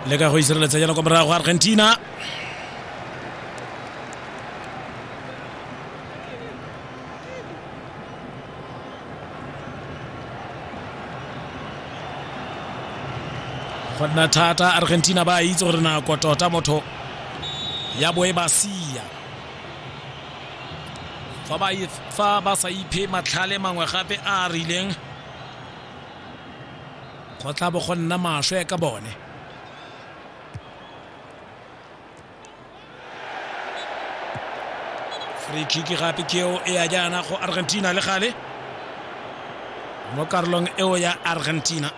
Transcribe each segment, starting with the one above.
le ka go isireletsa jana kwa morago argentina go nna thata argentina ba itse gore nako tota motho ya boe ba sia fa ba sa iphe matlhale mangwe gape a a rileng go tla bo go nna maswe ka bone free kick gape ke eo e ya jaana go argentina le gale mo karolong eo ya argentina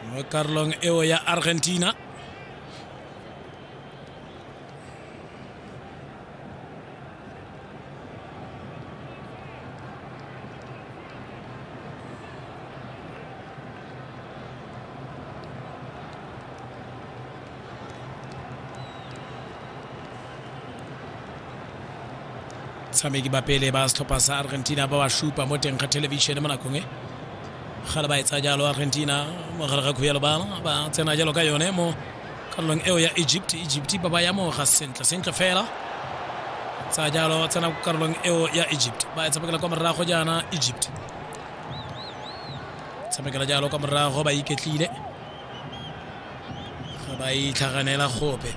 mo karolong eo ya argentina batshameki ba pele ba setlhopha sa argentina ba ba supa mo teng ga thelebišene mo nakong e ga le ba etsa jalo argentina mogare ga khuya lebala ba tsena jalo ka yone mo karolong eo ya egypt egypt ba ba yamoga sentle sentle fela sa jalo tsena ko karolong eo ya egypt ba e tshamekela kwa morago jaana egypt tshamekela jalo kwa morago ba iketlile ga ba itlhaganela gope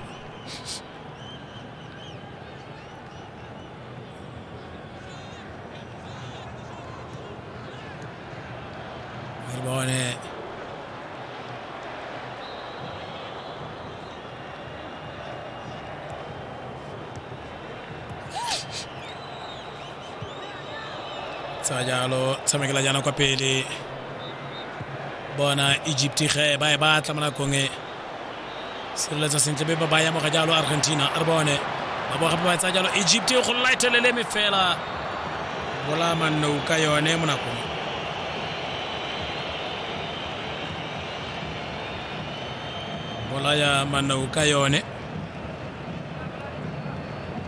Meriboane. tsa jalo tshamekela jaana kwa pele bona egypt ge ba e batla mo nakong e sireletsa sentle be ba ba yamoga jalo argentina a re bone ba bo gape ba tsa jalo egypt e go laetelele me fela bola mannou ka yone mo nakong bolaya mannou ka yone